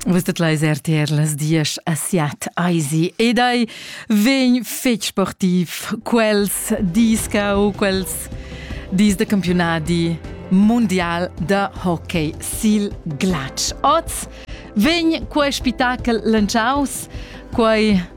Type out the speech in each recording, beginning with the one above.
Vus det leis RTR las diesch a siat eisi ed ei vegn fetg sportiv quels dis cau quels dis de campionadi mondial de hockey sil glatsch. Oz vegn quei spettacel lantschaus, quei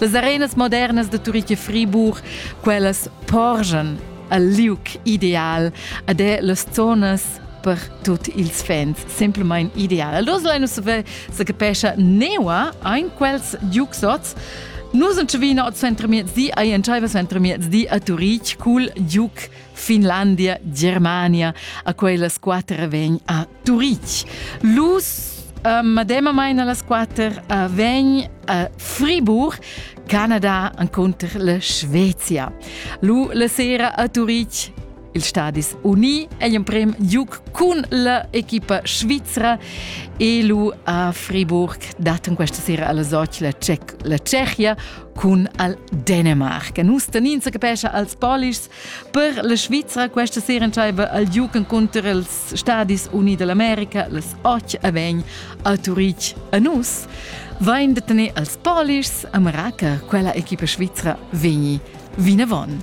Las arenas modernas de Turich e Friburg, quellas porgen al liuc ideal ed è las zonas per tut ils fans simplamain ideal. Allora la nus se capescha neua ein quels giuxots Nus sind schon wieder zu Mietzi, ein entscheiver zu Mietzi a Turich cul giuc Finlandia, Germania, a quellas quatter vegn a Turitg. Lus Uh, mademamain a las quatter uh, vegn a Fribourg, Canada encunter la Svezia. Lu la sera a Turitg ils Stadis Uni è emprim giug cun la equipa svizra e lu a Friburg daten questa sera alla Soci la, Cec la Tschechia cun al Dänemark. Nus tenin sa capescha als Polischs Per la Svizra questa sera entschaiva al Duke encunter els Stadis Uniti dell'America las 8 a 20 a Turitg a nus. Vain de tener als Polish a Maraca quella equipa svizra vegni vinavon.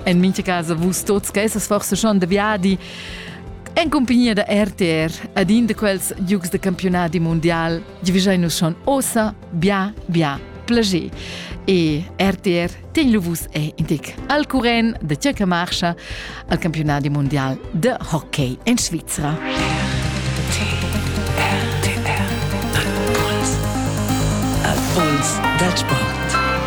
En mincha casa vus tots che essas forse schon de viadi en compagnia da RTR ad in de quels Dukes de campionati mondial, vi nus schon ossa bia bia plager. E RTR Tegluvus è indic al curent de tgè che marcha al campionat mondial de hockey en Svizra. Al puls dal sport.